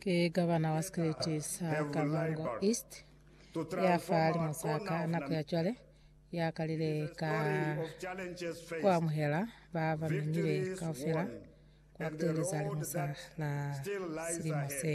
Ki Governor wa Sikriti sa Kavango East ya fahalimu sa ka nako ya cwale ya kalile ka ku amuhela ba ba memile kaufela kwa ku teeleza limusa la silimo se.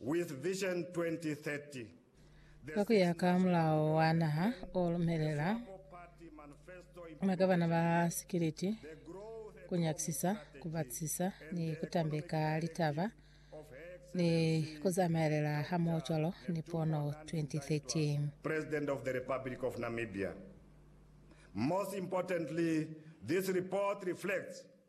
With Vision 2030, Ka ku ya ka Mulao wa Naha o lumelela magavana ba sikiliti ku nyakisisa, ku batisisa ni ku tambeka litaba ni ku zamaelela hamoho cwalo ni Pono 2030. President of the Republic of Namibia. Most importantly, this report reflects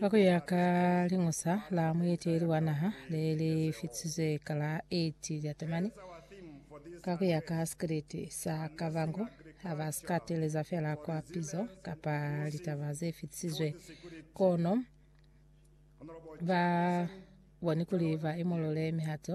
Ka ku ya ka liñusa la mueteleli wa naha le li fitisizwe ka la 8 Lyatamani, ka ku ya ka sikriti sa Kavango, ha ba si ka teeleza feela kwa pizo kapa litaba ze fitisizwe, kono ba boni kuli ba imulule mihato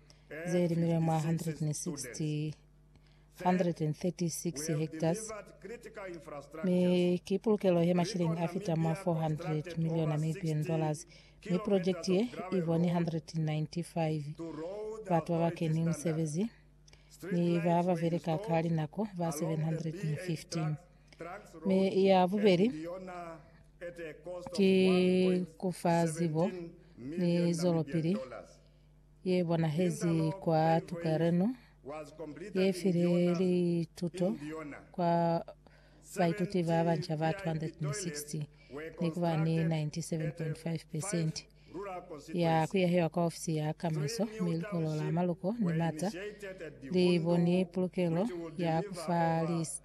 ze limilwe mwa 160 136 hectares mi ki pulukelo he mashilingi a fita mwa 400 million Namibian dollars mi project ye i boni 195 batu ba ba keni musebezi ni ba ba beleka ka linako ba 715 mi ya bubeli ki kufa zibo ni zwelopili ye bonahezi kwa tukelano ye file lituto kwa baituti ba banca ba 260 ni ku ba ni 97.5 percent ya kuyahewa kwa ofisi ya kamaiso mi likolo la maluko ni mata li boni pulukelo ya kufa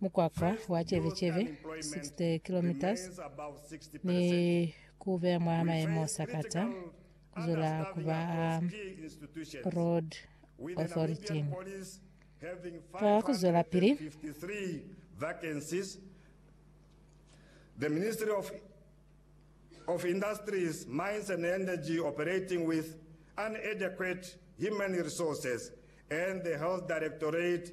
Mukwakwa wa cebe-cebe, 60 kilometres, ni ku beya mwa mayemo sakata ku zwela ku ba a road authority ka ku zwelapili. The Ministry of of Industries, Mines and Energy operating with unadequate human resources and the Health Directorate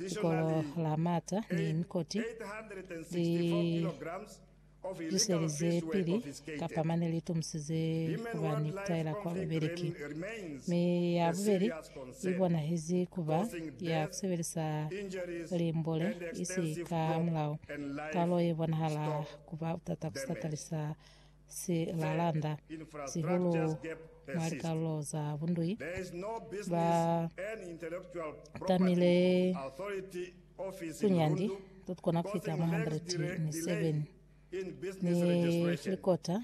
Likolo la Martha ni Nikoti li zwiselize pili kapa mane li tomusize ku ba ni ku taela kwa bubeli ki. Mi ya bubeli i bonahezi ku ba ya ku sebelisa limbole isi ka mulao. Kalo ye bonahala ku ba butata ku satalisa si lalanda, sihulu mwa likalulo za bundui, ba tamile tunyandi totukona kufita mwa 107 ni filikota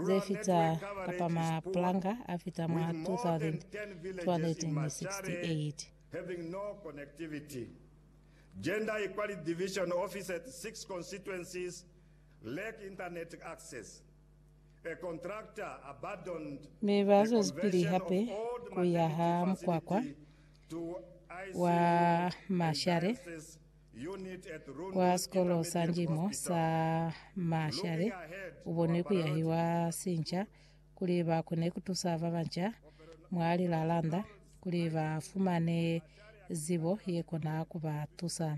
ze fita kapa mapulanga a fita mwa 2268. having no connectivity. Gender Equality Division office at six constituencies Lack internet access, A contractor abandoned Mi ba the zwezipili conversion hape of old ku yaha magnetic mukwakwa facility to wa ICU and mashale dialysis unit at Rundu kwa Sikolo sa Intermediate Njimo sa Hospital. Mashale Looking ahead, u bonwi ku Muaparoti yahiwa sinca kuli ba kone ku tusa ba banca mwa lilalanda kuli ba fumane zibo ye kona ku ba tusa.